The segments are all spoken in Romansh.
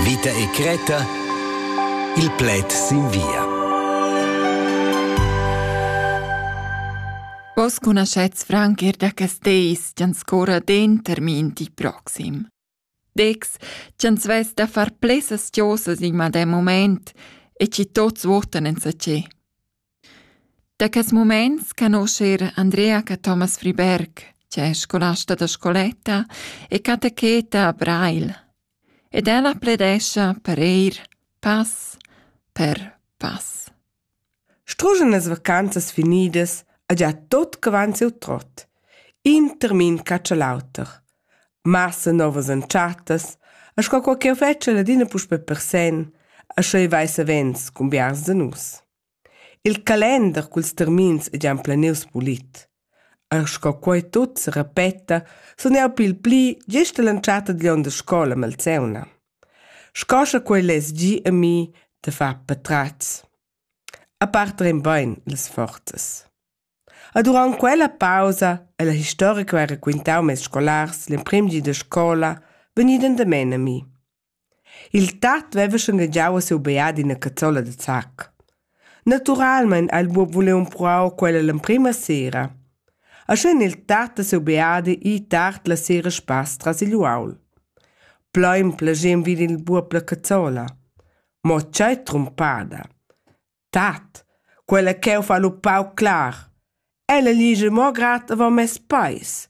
Vita e Creta Il pled sin via. Vos conoscets franc er da Casteis, gian scora den termin di proxim. Dex, gian svess da far plesas tiosas in madem moment e ci tots votan en sa ce. Da quels mumaints canuscha eir Andrea Cathomas Friberg, che es scolasta da scoletta e catecheta a Breil. Ed ella pledescha per eir pass per pass. Struschen las vacanzas finidas ha già tot quant siu trot. In termin catscha l'auter. massa novas entschattas e sco co ch'eu fetschia adina puspè per sen, e sche ei vai savens cun biars da nus. Il calender culs termins ei gian planius pulit. E sco quei tut se repeta, sun jau pil pli gist all'entschatta dagl on da scola Malzeuna. Sco sche quei less gi a mi da far patratgs. A part rein bain las forzas. E durant quella pausa e la historia che ho raquintau mes scolars l'emprim di da scola vegni dandamen a mi. Il tat veva shangagiau a siu beat ina cazzola da zacc. Naturalmein ha il buob vuliu empruar quella l'emprima sera. E sch'in il tat da siu beat i tard la sera spass tras igl uaul. Plein plagem vegn il buob la cazzola. Mo tgei trumpada! Tat, quella ch'eu fa lu pauc clar. Ella ligia mo grad avon mes peis.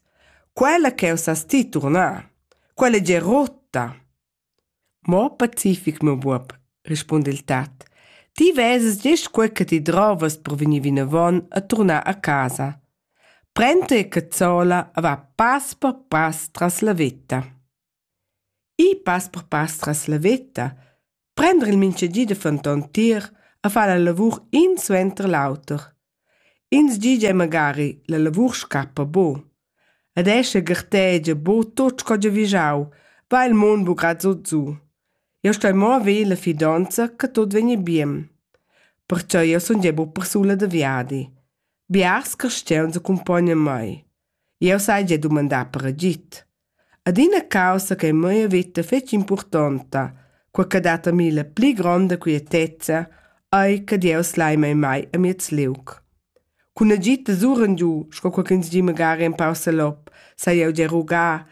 Quella ch'eu sas ti turnar. Quella è già rotta. Mo pacific, meu buob, rispunda il tat. Ti veses gest quei che ti drovas per vegnir vinavon a turnar a casa. Prend te cazzola e va pass per pass tras la vetta. Ir pass per pass tras la veta, prender il mintgagi da fenton tier e far la lavur in suenter l'auter. Ins di gia magari la lavur scappa bo. Ed escha gartegia bo tot sco giavischau, va il mund bu grad so giu. Eu stoi mo haver la fidonza che tot vegni bien. Perciò eu sun gia bu persuna da viadi. Biars cristians accompagnan mei. Eu sai gia dumandar per agid. Adina caussa ch'ei mia veta fetschi impurtonta, quei che dat a mi la pli gronda quietezza, ei che Dieus lai mei mai amiez liug. Cun agid da suren giu, sco co ch'ins di magari empau salop, sai jeu dir rugar,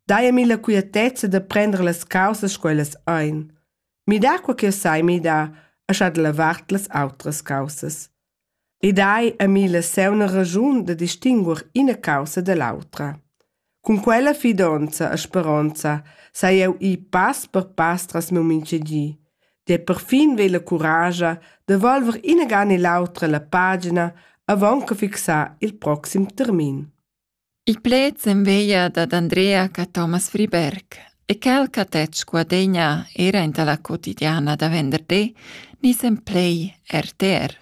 dai a mi la quietezza da prender las caussas sco ellas ein. Mi dà quei ch'jeu sai midar e scha da la vart las autras caussas. Ed hai ami la seuna ragiun da distinguer ina caussa da l'autra. Cun quella fidonza e speronza sai eu ir pass per pass tras meu minchedi. Der perfin ve la curascha da volver inaga ne l'autra la pagina avant che fixar il proxim termin. Il pled s'enveglia dad Andrea ch'a Thomas Friberg e quel ch'ha detg Guadegna era enta la quotidiana da venderdi, niz en play RTR.